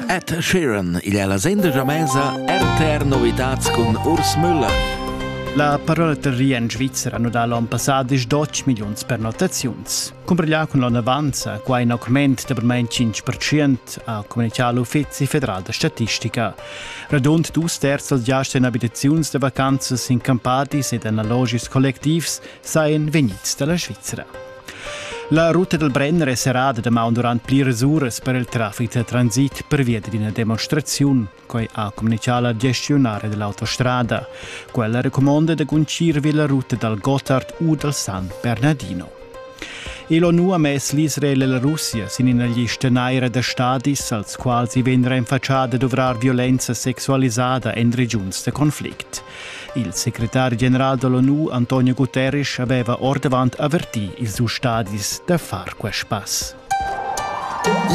Ed Sheeran, igl è la sendegia mesa RTR Novitats cun Urs Müller. La parolteria en Svizzera nu dà l'on passà disch doc milliuns pernottaziuns. Cumbriglià cun l'onnavanza, qua in augment da bermain 5% ha communichà l'Uffizi federal da statistica. Radund dus terzs giasts en abitaziuns da vacanzas in campadis ed analogis collectivs sajan vegnids da la Svizzera. La ruta dal Brenner è serrada damaun durant pliras uras per il traffic da transit pervia d'ina demonstraziun. Quai ha communitgà la gestiunara dell'autostrada. Quella recumonda da guncir vi la ruta dal Gotthard u dal San Bernardino. L'ONU ha mess l'Israel e la Russia sin ina lista naira da stadis, als quals i vegn renfatschà da duvrar violenza sexualisada en regiuns da conflict. Il secretari general da l'ONU Antonio Guterres aveva ordavant avertì ils ustadis da far quest pass.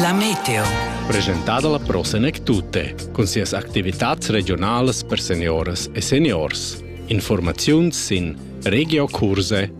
La meteo. Presentada la prossima e tutte, con sias activitats regionales per seniores e seniors. Informazioni sin regiocurse.eu.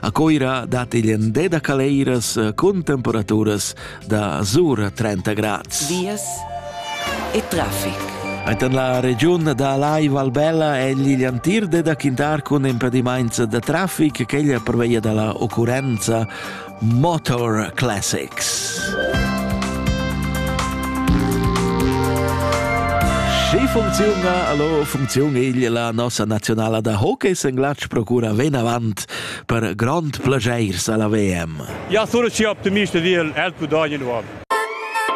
A Coira dat igl ende da caleiras eh, cun temperaturas da zura 30 grads. Vias e traffic. Enten la regiun da Lai Valbella è igl antir de da quintar cun impedimaints da traffic ch'eglia preveia dalla occurrenza Motor Classics. Schi funcziuna, allo, funziun igl la nossa nazionala da hockey senglatsch procura venavant per grond plaschairs alla VM. Ja, sono schi optimist ed il el pudogn nuov.